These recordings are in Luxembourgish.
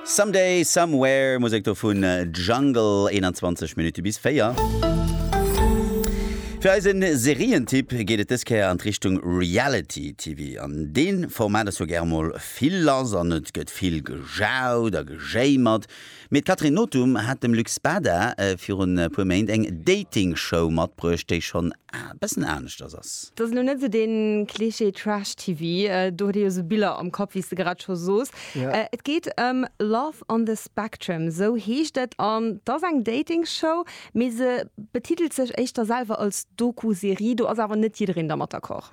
Someday, Somewhere, Musek do vun Jungle, 21 Minutte bis 4. Fir eise Serientipp geet et dës Kéier an d'Richtung Reality TV. An dee Format ass jo gäre mol vill lass an et gëtt vill gejaut a gejéimert. Mee d'Catherine Nothum hat dem Luc Spada virun e puer Méint eng Dating-Show matbruecht, déi schonn A bessen aaneschters ass. Dass elo net sou den Klischee Trash TV, do huet ee jo sou Biller am Kapp wéi's de grad scho soos. Et geet ëm Love on the Spectrum, sou heescht et an 't ass eng Dating Show, mee se betitelt sech éischter selwer als Doku Serie. Do ass awer net jiddereen dermat d'accord.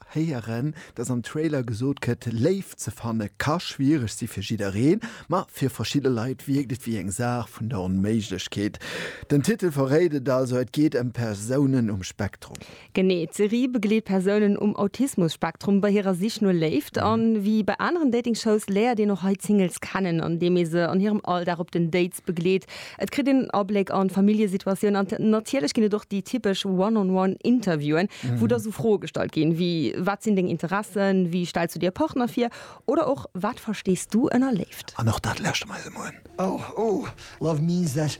héieren, dass am Trailer gesot gëtt, Léift ze fanne ka schwiereg si fir jiddereen, ma fir verschidde Leit wierkt et wéi eng Saach vun der Onméiglechkeet. Den Titel verréit et also, et geet ëm Persounen um Spektrum. Genee, d'Serie begleet Persounen um Autismus-Spektrum bei hirer Sich no Léift. A wéi bei aneren Dating-Shows léiert een och hei d'Singles kennen, andeem ee se an hirem Alldag op den Dates begleet. Et kritt een Abléck an d'Familljesituatioun an natierlech ginn et och déi typesch One-on-One Interviewen, wou da sou Froe gestallt ginn, wéi Wat sinn deng Interessen? Wéi stells du dir e Partner vir? Oder och Wat verstees du ënner Léift? An och dat lauschte mer eis emol un. Oh, oh, love means that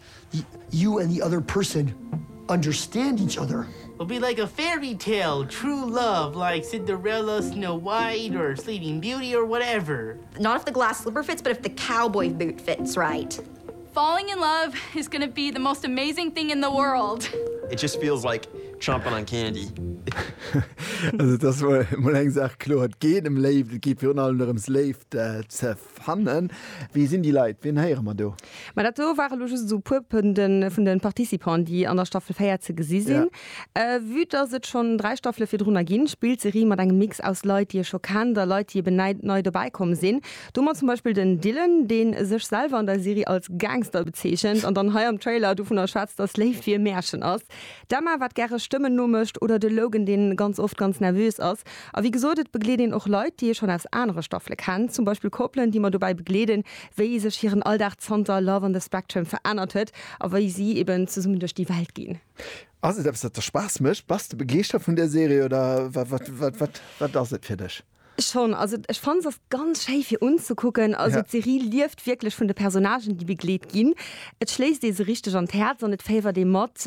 you and the other person understand each other. Will be like a fairy tale, true love, like Cinderella, Snow White, or Sleeping Beauty, or whatever. Not if the glass slipper fits, but if the cowboy boot fits right. Falling in love is gonna be the most amazing thing in the world. It just feels like chomping on candy. Also et ass mol eng Saach kloer, et geet ëm Léift, et geet virun allem dorëms Léift ze fannen. Wie sinn déi Leit, wien héiere mer do? Ma dat do ware lo just esou e puer vun de Participanten, déi an der Staffel 4 ze gesi sinn. Vue dass et schonn dräi Staffele virdrunner ginn, spillt d'Serie mat engem Mix aus Leit, déi ee scho kennt a Leit, déi eben nei dobäi komm sinn. Do mer zum Beispill den Dylan, deen sech selwer an der Serie als Gangster bezeechent an dann hei am Trailer dovunner schwätzt, dass Léift wéi e Märchen ass, d'Emma, wat gäre Stëmmen nomécht, oder de Logan, dee ganz oft ganz nervös ass. A wéi gesot, et begleet een och Leit, déi ee schonn aus anere Staffele kennt, zum Beispill Koppelen, déi mer dobäi begleeden, wéi sech hiren Alldag zanter Love on the Spectrum verännert huet a wéi si eben zesummen duerch déi Welt ginn. Ass et eppes, dat der Spaass mécht? Bass de begeeschtert vun där Serie oder wat ass et fir dech? Schon, also ech fannen se ganz schéi fir unzekucken, also d'Serie lieft wierklech vun de Personnagen déi begleet ginn. Et schléisst ee se richteg an d'Häerz an et féiwert ee mat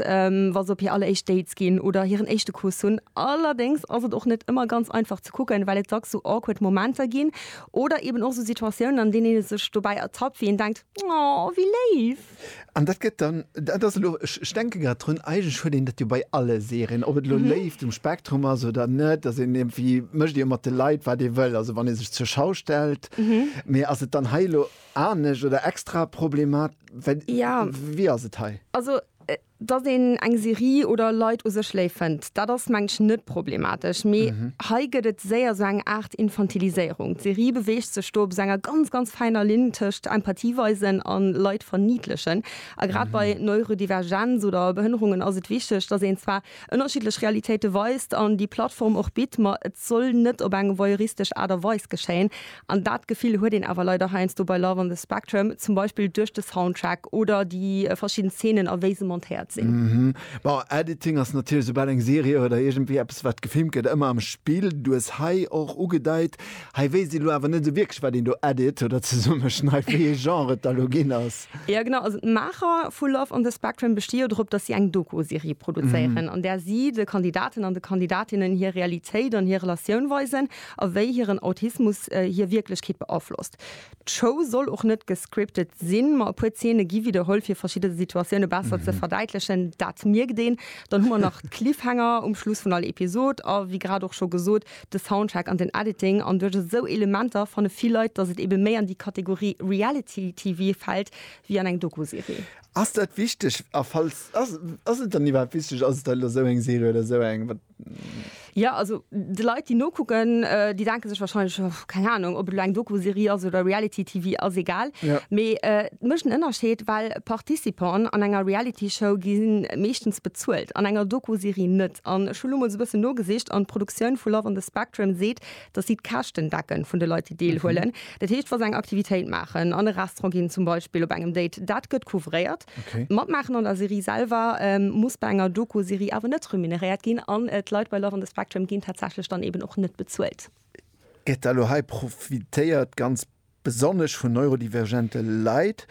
wa se op hir alleréischt Dates ginn oder hiren éischte Kuss hunn. Allerdéngs ass et och net ëmmer ganz einfach ze kucken, well et dacks sou awkward Momenter ginn oder eben och sou Situatiounen an deenen ee sech dobäi ertappt wéi een denkt, oh wéi léif. An dat gëtt dann, dat ass elo, ech denke grad drun, eigentlech huet een dat jo bei alle Serien, ob et elo Léift um Spektrum ass oder net, dass een iergendwéi, mécht ee jo mat de Leit, wat ee wëll, also wann ee sech zur Schau stellt. Mee ass et dann hei elo anescht oder extra problemat-, well, wéi ass et hei? Also Dass een eng Serie oder Leit u sech léif fënnt, dat ass mengen ech net problematesch, mee hei gëtt et séier sou eng Aart Infantiliséierung. D'Serie beweegt sech do op sou enger ganz, ganz fäiner Linn tëscht Empathie weisen a Leit verniidlechen. A grad bei Neurodivergenz oder Behënnerungen ass et wichteg, dass een zwar ënnerschiddlech Realitéite weist an déi Plattform och bitt, ma et soll net op eng voyeuristesch Aart a Weis geschéien. An dat Gefill huet een awer leider heiansdo bei Love on the Spectrum, zum Beispill duerch de Soundtrack oder déi verschidden Zeenen a wéi se montéiert sinn. Mhm. Bon, Editing ass natierlech, soubal eng Serie oder iergendwéi eppes wat gefilmt gëtt, ëmmer am Spill. Du hues hei och ugedeit, hei wéisst een elo awer net esou wierklech wat een do edit oder zesummeschneit, wéi ee Genre et da elo ginn ass. Jo genau, also d'Maacher vu Love on the Spectrum besti jo drop, datt si eng Doku-Serie produzéieren, an där si de Kandidaten an de Kandidatinnen hir Realitéit an hir Relatioun weisen a wéi hiren Autismus hir Wierklechkeet beaflosst. D'Show soll och net gescriptet sinn, ma e puer Zeene gi widderholl, fir verschidde Situatioune besser ze verdäitlechen. Dat mierkt een. Dann hu mer nach d'Cliffhanger um Schluss vun all Episod a wéi grad och scho gesot, de Soundtrack an den Editing. An duerch esou Elementer fanne vill Leit, datt et ebe méi an déi Kategorie Reality TV fält wéi an eng Doku-Serie. Ass dat wichteg? A falls, ass et dann iwwerhaapt wichteg? Ass et dann elo esou eng Serie oder esou eng? Ja also de Leit déi nokucken, äh, déi denke sech wahrscheinlech oh, keng Ahnung, ob et lo eng Doku-Serie ass oder Reality TV ass egal. Ja. Mee äh, et mécht en Ënnerscheed, well Participanten an enger Reality-Show gi meeschtens bezuelt, an enger Doku-Serie net. An ech hu lo mol sou e bëssen nogesicht an d'Produktioun vu Love on the Spectrum seet, datt si d'Käschten decken vun de Leit déi deelhuelen. Dat heescht wa se eng Aktivitéit maachen, an e Restaurant ginn zum Beispill, op engem Date, dat gëtt couvréiert. D'Matmaachen an der Serie selwer muss bei enger Doku-Serie awer net remuneréiert ginn an d'Leit bei Love on the Spectrum ginn tatsächlech dann eben och net bezuelt. Gëtt da elo hei profitéiert, ganz besonnesch vun neurodivergente Leit?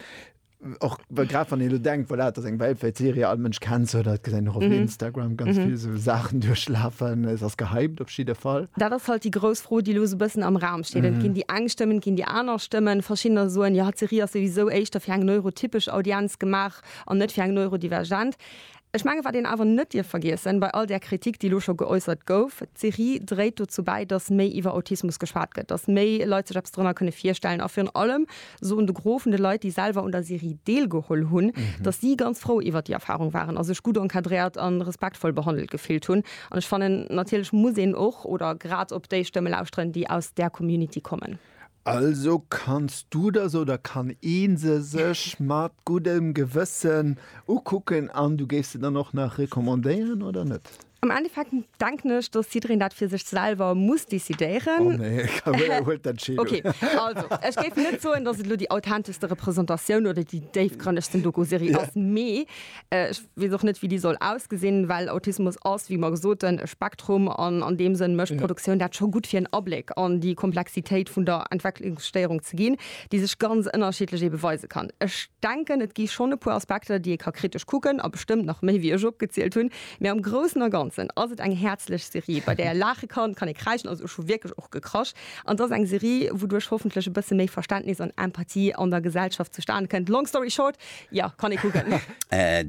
Och grad wann een elo denkt, voilà, et ass eng weltwäit Serie, all Mënsch kennt se oder et gesäit een och op Instagram ganz vill esou Saachen duerchlafen, se ass gehypt op jidde Fall. Dat ass halt déi grouss Fro, déi elo esou e bëssen am Raum Stillend ginn déi eng Stëmmen, ginn déi aner Stëmmen. Verschiddener soen, jo, d'Serie ass souwisou éischter fir eng neurotypesch Audienz gemaach an net fir eng neurodivergent. Ech mengen, wat een awer net dierf vergiessen, bei all där Kritik, déi elo scho geäussert gouf, d'Serie dréit dozou bäi, datt méi iwwer Autismus geschwat gëtt, datt méi Leit sech eppes dorënner kënne virstellen a virun allem soen de Gros vun de Leit, déi selwer un der Serie deelgeholl hunn, datt si ganz frou iwwert déi Erfarung waren a sech gutt encadréiert a respektvoll behandelt gefillt hunn. An ech fannen, natierlech muss een och oder grad op déi Stëmme lauschteren, déi aus där Community kommen. Also kanns du der se oder kann ee se sech mat guddem Gewëssen ukucken an du géifs se dann och nach recommandéieren, oder net? Am Endeffekt denken ech, dass jiddereen dat fir sech selwer muss decidéieren. Oh nee, Carole huelt d'Entscheedung. Okay, also ech géif net soen, dass et elo déi authenteschste Repräsentatioun oder déi déifgrënnegsten Doku-Serie ass, mee ech weess och net, wéi déi soll ausgesinn, well Autismus ass, wéi mer gesoten, e Spektrum an an deem Sënn mécht d'Produktioun dat scho gutt, fir en Abléck an déi Komplexitéit vun der Entwecklungsstéierung ze ginn, déi sech ganz ënnerschiddlech ebe weise kann. Ech denken, et gi schonn e puer Aspekter, déi ee ka kritesch kucken a bestëmmt nach méi, wéi ech opgezielt hunn. Mee am Groussen a Ganzen ass et eng häerzlech Serie, bei där ee laache kann, kann ee kräischen, also ech hu wierklech och gekrasch, an et ass eng Serie, wouduerch hoffentlech e bësse méi Verständnis an Empathie an der Gesellschaft zustane kënnt. Long story short, jo, kann ee kucken.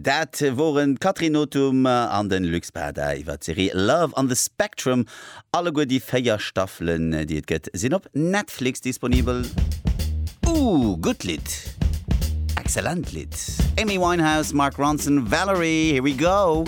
Dat woren d'Catherine Nothum an de Luc Spada iwwer d'Serie Love on the Spectrum Alleguer déi 4 Staffelen déi et gëtt sinn op Netflix disponibel. Ooh, gutt Lidd! Excellent Lidd! Amy Winehouse, Mark Ronson, Valerie, here we go!